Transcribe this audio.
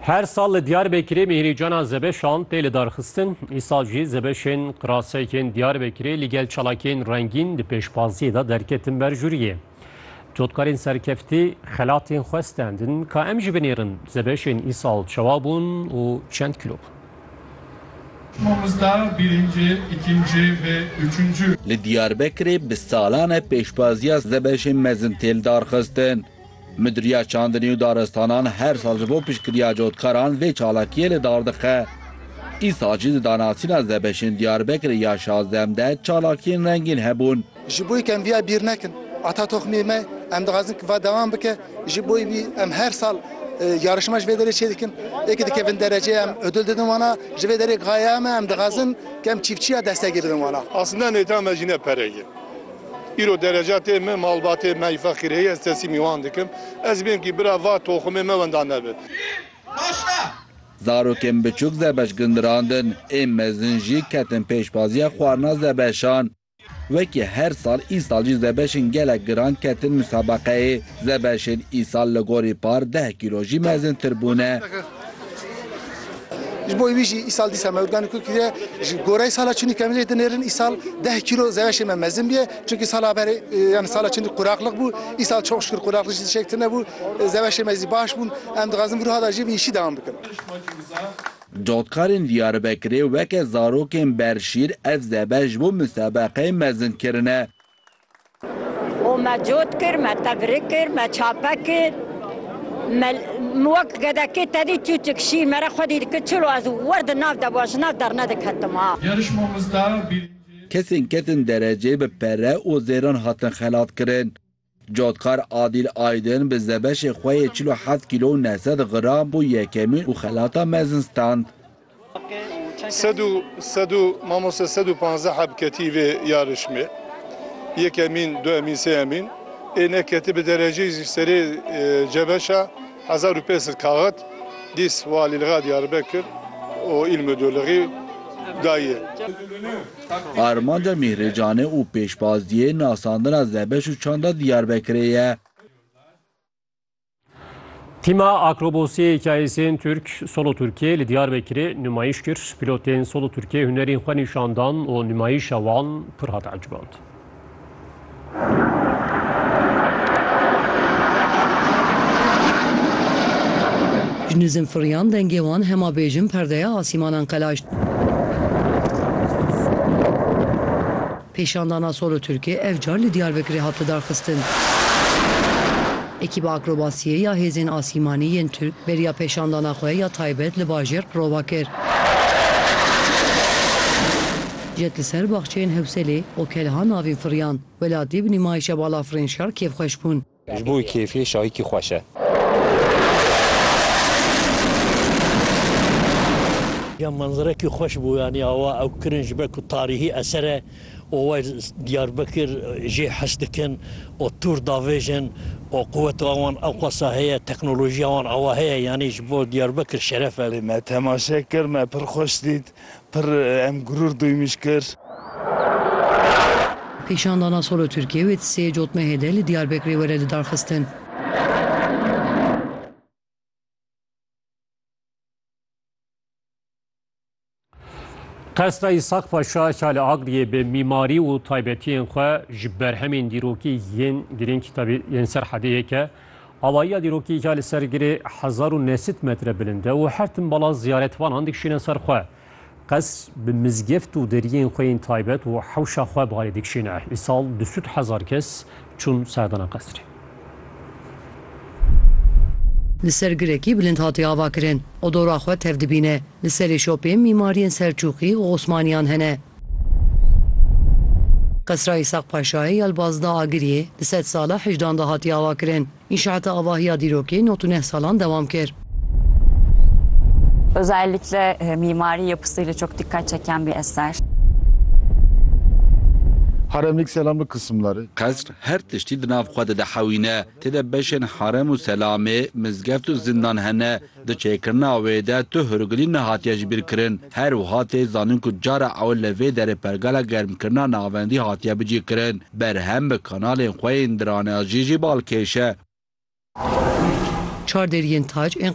Her sal li Diyarbekirê mîhrîcana zebeşan tê lidarxistin. Îsal jî zebeşên qirasekên Diyarbekirê li gel çalakiyên rengîn di pêşbaziyê de derketin ber jûriyê. Cotkarên serkeftî xelatên xwe stendin. Ka em jî binêrin zebeşên îsal çawa bûn û çend kilo bûn. Mamosta birinci, ikinci ve üçüncü. Li Diyarbekirê bi salan e pêşbaziya zebeşên mezin tê lidarxistin. Midiriya Çandinî û Daristanan her sal ji bo piştgiriya cotkaran vê çalakiyê li dar dixe. Îsal jî di danasîna Zebeşên Diyarbekirê ya şazdem de çalakiyên rengîn hebûn. Ji bo ku em viya bîr nekin, ata toxmê me, em dixwazin ku va dewam bike. Ji bo vî em her sal yarışma ji vê derê çêdikin. Ê ku dikevin derece em ödül didin wan a. Ji vê derê ku haya em e, em dixwazin ku em çîfçiya destegî bidin wan a. Aslînda nêta me jî ne pere ye. Îro derecatê me malbatê me yî feqîr heye ez tesîmî wan dikim. Ez bêm kî bira va toxumê me wenda nebe. Zarokên biçûk Zebeş gindirandin, ên mezin jî ketin pêşbaziya xwarina Zebeşan. Wekî her sal îsal jî Zebeşên gelek giran ketin musabeqeyê. Zebeşên îsal li gorî par deh kîlo jî mezintir bûne. Ji bo wî jî îsal dîsa me Urganî kûr kiriye. Ji goreyê sala çinî kemijê dinêrin îsal deh kîlo zeweşê me mezin bûye. Çimkî sala berê yan sala çinî quraqlik bû. Îsal çok şikir quraqlik jî şêk tune bû. Zeweşê me zî baş bûn. Em dixwazin vîruha da jî bi îşî dewam bikin. Dotkarên Diyarbekirê weke zarokên berşîr ev zebe ji bo musebeqeyê mezin kirine. û me cot kir, me tevrik kir, me çape kir. Me wek gedekê tevî çûçik şî me re xwedî dikir çil û ez wer di nav de wa ji nav dernediketim a. Yarışmamızda birinci. Kesên ketin derecê bi pere û zêran hatin xelatkirin. Cotkar Adîl Aydin bi zebeşê xwe yê çil û heft kîlo û neh sed gram bû yekemîn û xelata mezin stand. Sed û sed û mamoste sed û panzdeh heb ketî vê yarişmê. Yek emîn, du emîn, sê emîn. Ê ne ketî bi dereceyî zî serê cebeşa hezar û pênc sed kaxit dîs Walîliga Diyarbekir û Îl Mudûlixî dayî. Armanca Mîhrê Canê û pêşbazîyê nasandina zebeş û çanda Diyarbekirê ye. Tîma akrobosiyê hikayesên Türk Solo Türkiye li Diyarbekirê nûmayîş kir. Pîlotên Solo Türkiye hunerên xwe nîşandan û nûmayîşa wan pir hat eciband. Ji nizin firiyan dengê wan hema bêjin perdeya asîmanan qelaşt. Pêşandana Solo Turkê ev car li Diyarbekirê hate darxistin. Ekîba akrobasiyê ya Hêzên Asîmanî yên Turk beriya pêşandana xwe ya taybet li bajêr Qirova kir. Jet li ser baxçeyên Hewselê û Kelha navîn firiyan. Welatî bi nîmayişa balafirên şer kêfxweş bûn. Ji bo wî kêfê şahîkî xweş e. Ya menzirekî xweş bû yanî awa ew kirin ji ber ku tarîhî eser e û wê Diyarbekir jê his dikin û tûr davêjin û quweta wan ewqasa heye, teknolojiya wan awa heye yanî ji bo Diyarbekir şeref e. Me temaşe kir, me pir xweş dît. Pir em gurur duymiş kir. Kîşandana Solo Tirkiye wê di sê cot mehê de li Diyarbekirê were lidarxistin. Qesra Îshak Paşa ya li Agliyê bi mîmarî û taybetiyên xwe ji berhemên dîrokî yên girîng tevî yên ser hedê yek e. Avayiya dîrokî ya li ser girê hezar û neh sed metre bilind e û her tim bala ziyaretvanan dikişîne ser xwe. Qes bi mizgeft û deriyên xwe yên taybet û hewşa xwe balê dikişîne. Îsal du sed hezar kes çûn serdana qesrê. Li ser girekî bilind hatiye avakirin û dora xwe tev dibîne. Li serê şopê mîmariyên Selçûqî û Osmaniyan hene. Qesra Îshak Paşayê ya li Bazda Agiriyê di sed sala hicdan de hatiye avakirin. Înşaata avahiya dîrokê nod û neh salan dewam kir. Özellikle mimari yapısıyla çok dikkat çeken bir eser. Haremlik selamlık kısımları. Qesr her tiştî di nav xwe de dihewîne. Tê de beşên harem û selamê, mizgeft û zindan hene. Di çêkirina wê de tu hûrgilî nehatiye ji bîr kirin. Her wiha tê zanîn ku cara ewil li vê derê pergala germkirina navendî hatiye bicîkirin. Berhem bi kanalên xwe yên diraneajiyê jî balkêş e. Çar deriyên tac ên